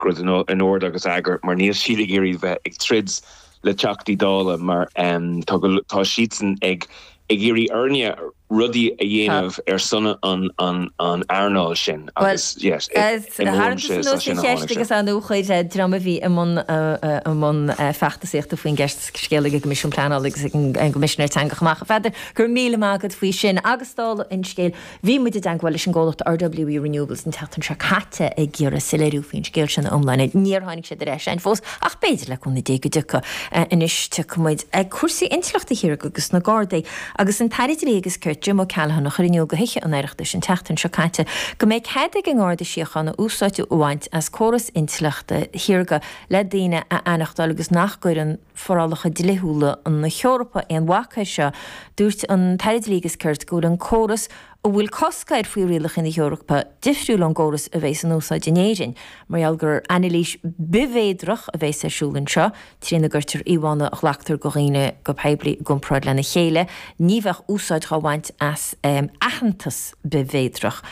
rud in ord agus eagar mar níl siad ag iarraidh bheith ag troid le Teachtaí Dála mar tá siadsan ag iarraidh orainn rudaí a dhéanamh ar son an earnáil sin agus yes imrím sé sin amháin ag agus an-chuid dream a bhí i mbun i mbun feachtasaíochta faoin gceist seo leis an gCoimisiún Pleanála agus an gCoimisinéir Teanga chomh maith. A Pheadair, go raibh míle maith agat faoi sin agus dála an scéil, Bhí muid i dteagmháil leis an gcomhlacht RWE Renewables an tseachtain seo caite ag iarraidh soiléiriú faoin scéal sin ina iomláine. Níor tháinig siad ar ais againn fós ach b'fhéidir le cúnamh Dé go dtiocfaidh. Anois tiocfaidh muid ag cúrsaí intleachta shaorga agus na Gardaí agus an tAire Dlí agus Cirt, Jim O'Callaghan, a chuir in iúl go Thithe an Oireachtais an tseachtain seo caite go mbeidh cead ag an nGarda Síochána úsáid a bhaint as córas intleachta shaorga le daoine a aithneachtáil agus nach gcuireann forálacha dlíthiúla na hEorpa aon bhac air seo. Dúirt an tAire Dlí agus Cirt go bhfuil an córas a bhfuil cosc air faoi rialacha na hEorpa difriúil ón gcóras a bheas in úsáid in Éirinn mar gheall gur anailís bithmhéadrach a bheas ar siúl anseo trína gcuirtear íomhánna a ghlactar de dhaoine go poiblí i gcomparáid lena chéile. Ní bheadh úsáid dhá bhaint as aitheantas bithmhéadrach.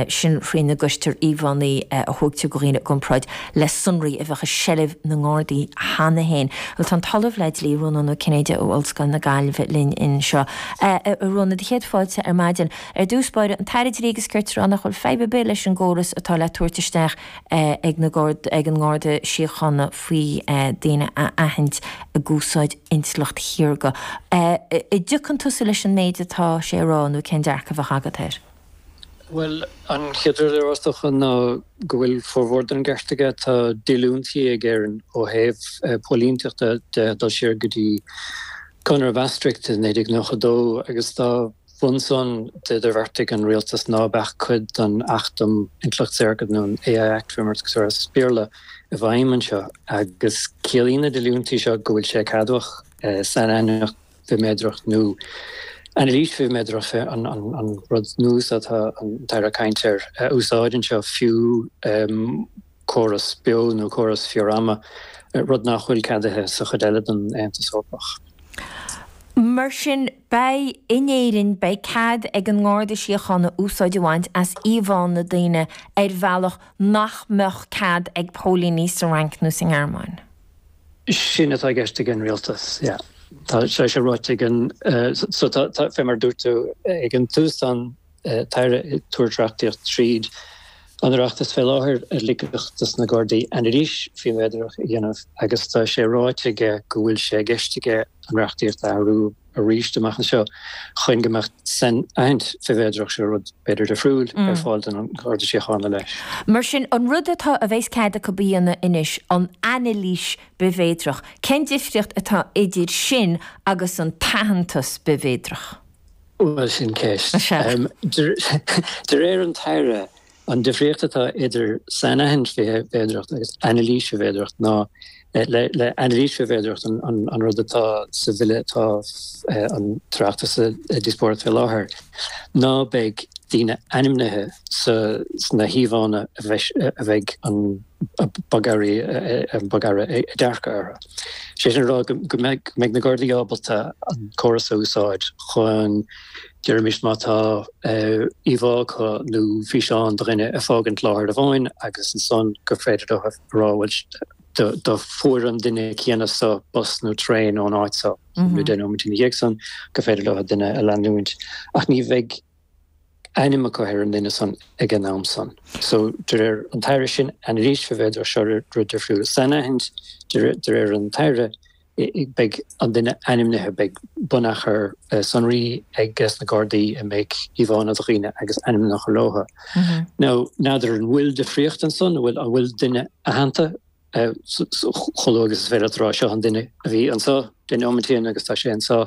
sin faoina gcuirtear íomhánna a thógtear de dhaoine i gcomparáid le sonraí a bheadh i seilbh na nGardaí cheana féin. Bhuel, tá an tOllamh le Dlí, Rónán Ó Cinnéide ó Ollscoil na Gaillimhe linn anseo. A Rónáin, do chéad fáilte ar maidin. Ar dtús báire, an tAire Dlí agus Cirt ag rá nach bhfuil fadhb ar bith leis an gcóras atá le tabhairt isteach ag na ag an nGarda Síochána faoi daoine a aithint ag úsáid intleacht shaorga. An dtiocfá tusa leis an méid atá sé a rá nó cén dearcadh a bheadh agat air? Bhuel, an chéad rud le rá is dócha ná go bhfuil formhór den cheart aige. Tá díolúintí ag Éirinn ó thaobh póilínteachta de ag dul siar go dtí Conradh Maastricht i 1992 agus dá bharr san d'idirbheartaigh an rialtas ná beadh cuid den Acht um Intleacht Shaorga, nó an AI Act fé mar a deirtear as Béarla, i bhfeidhm anseo agus ciallaíonn na díolúintí seo go bhfuil sé ceadmhach sainaithniúchán. bhithmhéadrach nó anailís bhithmhéadrach an rud nua seo atá an tAire ag caint air a úsáid anseo, fiú córas beo nó córas fíor-ama, rud nach bhfuil ceadaithe sa chuid eile den Aontas Eorpach. Mar sin, beidh, in Éirinn, beidh cead ag an nGarda Síochána úsáid a bhaint as íomhánna daoine ar bhealach nach mbeadh cead ag póilíní sa Fhrainc nó sa nGearmáin. sin atá i gceist ag an Rialtas. Tá sé ráite ag an fé mar dúirt tú ag an tús tá an tAire ag tabhairt reachtaíocht tríd an Oireachtas fé láthair a ligfeadh dos na Gardaí anailís bhithmhéadrach a dhéanamh agus tá sé ráite aige go bhfuil sé i gceist aige an reachtaíocht a athrú arís amach anseo chun go mbeadh sainaithint bhithmhéadrach, seo rud beagáinín difriúil, ar fáil don nGarda Síochána leis. Mar sin, an rud atá a bheas cead acu a dhéanamh anois, an anailís bithmhéadrach, cén difríocht atá idir sin agus an t-aitheantas bithmhéadrach? Bhuel, sin ceist. De réir an tAire, An difríocht atá idir sainaithint bhithmhéadrach agus anailís bhithmhéadrach ná le anailís bhithmhéadrach an rud atá sa Bhille atá an tOireachtas ag díospóireacht fé láthair ná beidh daoine ainmnithe sna híomhánna a bheidh an bogearra ag dearcadh orthu. Sé sin a rá go mbeidh na Gardaí ábalta an córas a úsáid chun Deirimid má tá íomhá acu nó físeán de dhuine ag fágaint láthair amháin agus ansan gur féidir dóibh a rá bhuel do fuair an duine céanna so bus nó traein ón áit so nó deich nóiméad ina dhiaidh san gur féidir leo an duine a leanúint ach ní bheidh ainm acu ar an duine san ag an am san. So de réir an tAire sin, anailís bhithmhéadrach, seo rud difriúil, sainaithint de réir an tAire. beidh an duine ainmnithe, beidh bunachar sonraí ag na Gardaí ina mbeidh íomhánna de dhaoine agus ainmneacha leo, n'fheadar an bhfuil difríocht ansan, an bhfuil an bhfuil duine aitheanta chomh luath agus is féidir leat a rá seo an duine a bhí anseo deich nóimint ó shin agus tá sé anseo.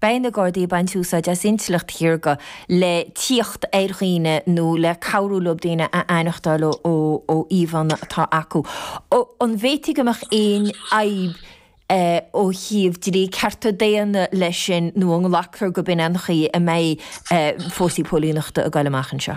Beidh na Gardaí ag baint úsáid as intleacht shaorga le tíocht ar dhaoine nó le cabhrú leo daoine a aithneachtáil ó íomhánna atá acu. An bhféadfadh go mbeadh aon fhadhb ó thaobh dlí cearta daonna leis sin nó an nglactar gurb in an chaoi a mbeidh fórsaí póilíneachta ag goil amach anseo?